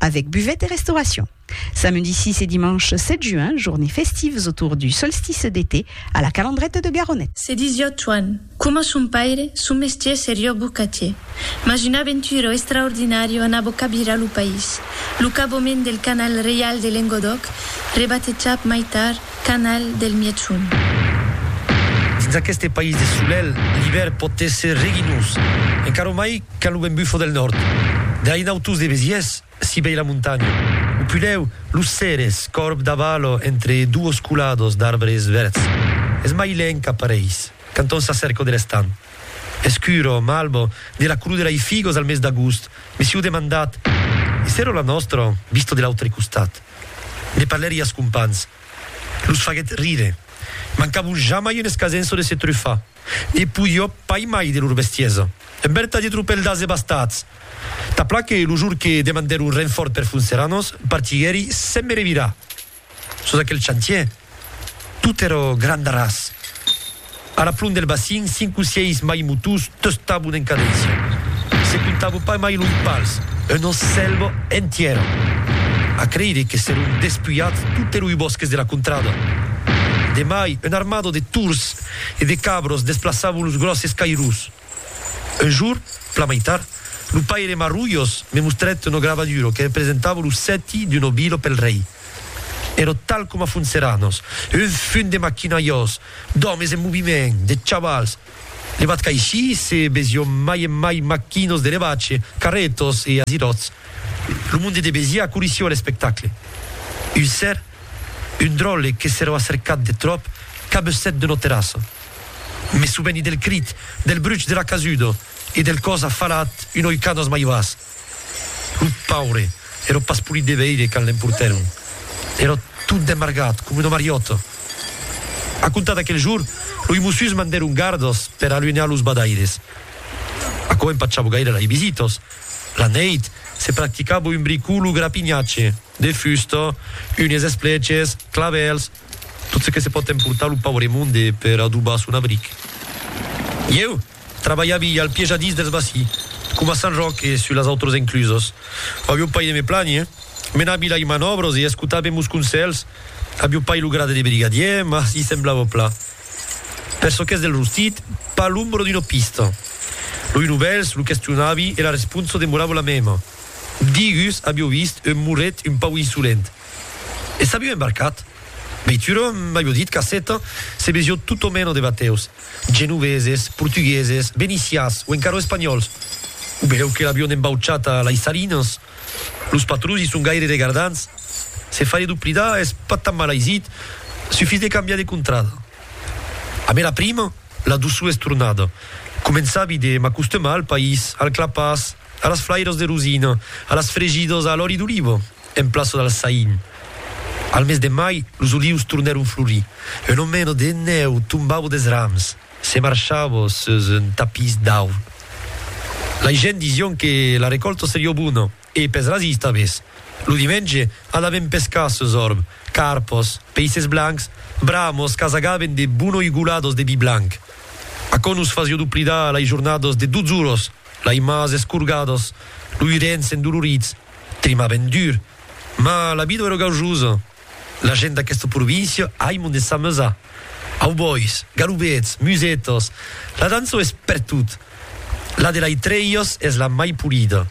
Avec buvette et restauration. Samedi 6 et dimanche 7 juin, journées festives autour du solstice d'été à la Calandrette de Garonnet. Se disiá Tuan, coma son paire, son mestier serió bocatier. Mas una aventura extraordinària anava cabirar lo país. Lo cabomèn del canal reial de Lengodòc, rebatejat mai tard, Canal del Mièchon. Dins aqueste país de solelh, l'ivèrn pòt èsser reginós, encara mai quand lo vent bufa del nòrd. Dai nautós de Besièrs, si vei la montanha, o pulèu los cères, còrb d'avalò entre duos colados d'arbres vèrds, es mai lent qu'apareis quand on s'acèrca de l'estam. Escuro, malbo, de la color de lei figos al mes d'agost, me sieu demandat, e s'èra la nòstra vista de l'autre costat? Ne parlèri as companhs. Los faguèt rire. Mancavon jamai un escasenço de se trufar. Ne podió pas mai de lor bestiesa. Un vertadier tropèl d'ase bastats! Ta pla que lo jor que demandèron renfòrt per Funceranos partiguèri sen me revirar sus aquel chantier. Tot ero grand arràs. A la plon del bacin, cinc o sièis maimotós tostabon en cadéncia. Se comptavo pas mai los pals, una selva entièra. A creire que s'èron despulhats tot eroi bòsques de la contrada. De mai, una armada de tords e de cabras desplaçavon los gròsses cairós. Un jour, plan mai tard, lo paire Marrullos me mostrèt una gravaduro que representava lo sèti d'un obilo pel rei. Èra tal coma Funceranos, un fum de maquinaiós, d'òmes en moviment, de chavals. Ne vat qu'aicí se vesión mai e mai maquinos de revache, carrètos e aziròts. Lo monde de Besiá corissió a l'espectacle. Un ser, un dròlle que s'èra acercat de tròp, cabussèt d'una terrassa. Me soveni del crit, del bruch de la casuda e del còs afalat un oi canas mai bas. Lo paure èra pas polit de veire quand l'emportèron. Èra tot demargat, coma una mariòta. A comptar d'aquel jorn, loi Mossus mandèron gardas per aluenhar los badaires. Aquò empachava gaire lei visitas. La neit, se practicava un bricolo grapinhatge, de fusta, unhes esplèches, clavèls, Tot ce que se pòt emportar lo paure monde per adobar son abric. Ieu, trabalhavi al piejadís dels Bací, coma Sant Ròc e sus las autras enclusas. Avió pas de me plànher. Menavi lai manòbras e escotavi mos conselhs. Avió pas lo grade de brigadier, mas i semblava plan. Per çò qu'es del rostit, pas l'ombra d'una pista. Lo Inovèls lo questionavi e la responsa demorava la mèma. Digus avió vist un moret un pauc insolent. E s'aviu embarcat. Veitura m'aviu dit qu'aceta se vesió tot o meno de bateus, genoveses, portugueses, venicias o encara espanhòls. Ubereu que l'avion embauchat a lei salinas. Los patrons i son gaire regardants. Se faire doplidar es pas tan mal aisit, sufís de cambiar de contrada. A me la prima, la doçor es tornada. Començavi de m'acostemar al país, al clapàs, a las flairas de rosina, a las fregidas a l'òli d'oliva. en plaça del Saïn. Al mes de mai, los olius tornèron florir. Un omeno de nèu tombavo des rams, se marchavo sus un tapís d'aur. Lei gents disión que la recòlta serió bona e pes rasist avés. Lo dimenge, anavem pescar sus orb, carpos, peisses blancs, bramos qu'asagaven de bonoigolados de vi blanc. Aquò nos fasió doplidar lei jornadas de dotz oros, lei mas escorgados, loi rens endolorits. Clima ben dur, ma la vida ero gaujosa. La gent d'aquesta província aimon de s'amusar. Aubois, galubets, musetas, la dança es pertot. La de lai Trèias es la mai polida.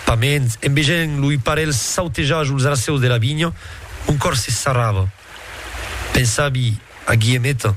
Paments, en vegent loi parelh sautejar jos racèus de la vinha, mon còr se sarrava. Pensavi a Guillemeta.